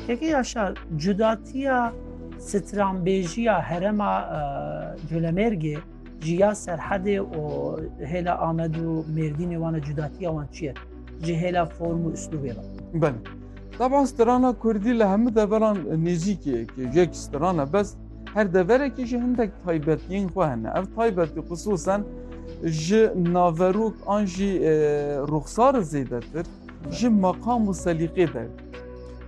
Peki Yaşar, cudatiya stranbêjiya herema e, Colemêrgê jiya serhedê û hêla Amed û Mêrdînê wana cudatiya wan çi ye? Ji hêla form û üslûbê re. Belê. Taban strana Kurdî li hemû deveran nêzîkê yekê. Yek strana bes her deverekî ji hindek taybetiyên xwe hene. Ev taybetî xisûsen ji naverok an jî e, ruxsar zêdetir. ji meqam û selîqê der.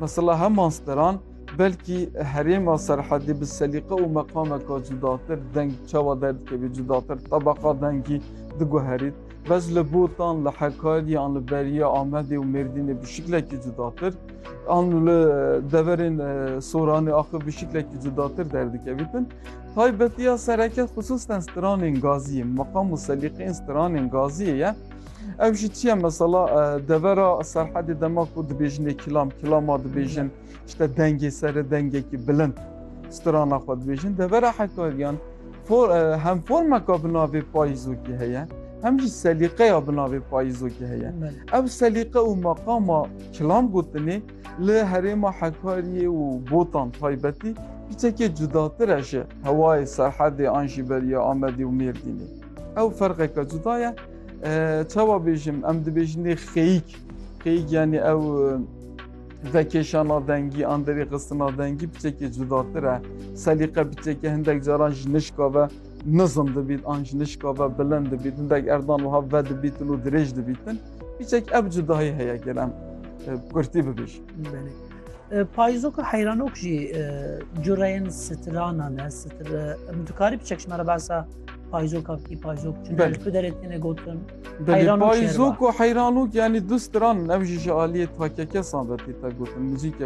Mesela heman steran belkî herêma Serhedê bi selîqe û meqameka cudatir deng çawa derdikevî cudatir tebeqa dengî diguherît. Bez li Botan, li Hekarî an li beriya Amedê û Mêrdînê bi şiklekî cudatir an li deverên Soranê axir bi şiklekî cudatir derdikevîtin. Taybetiya sereke xisûsten stranên gaziyê, meqam û selîqeyên stranên gaziyê ye. Ev jî çiye mesela devera serhedê dema ku dibêjinê kîlam, kîlama dibêjin, işte dengê serê dengekî bilind strana xwe dibêjin. Devera Hekariyan for, hem formeka bi navê payîzokî heye, hem jî selîqeya bi navê payîzokî heye. Ev selîqe û meqama kîlam gotinê li herêma Hekariyê û Botan taybetî hiçekê cudatir e ji hewayê serhedê an jî beriya Amedê û Mêrdînê. Ew ferqeke cuda ye. Çawa bêjim em dibêjinê xeyîk. Xeyîk yanî ew vekêşana dengî an derê xistina dengî biçekê cudatir e. Selîqe biçekê hindek caran ji nişka ve nizm dibît an ji nişka ve bilind dibît. Hindek erdan wiha ve dibîtin û dirêj dibîtin. Biçek ev cudahî heye gelam kurtî bibêjim. Payîzoka heyranok jî cureyên sitiranan e sitir em dikarî bi çekşmera basa payîzoka bikî payîzok ku derê têne gotin payîzok û heyranok yanî du stiran ev jî ji aliyê takekesan ve tê te gotin muzîke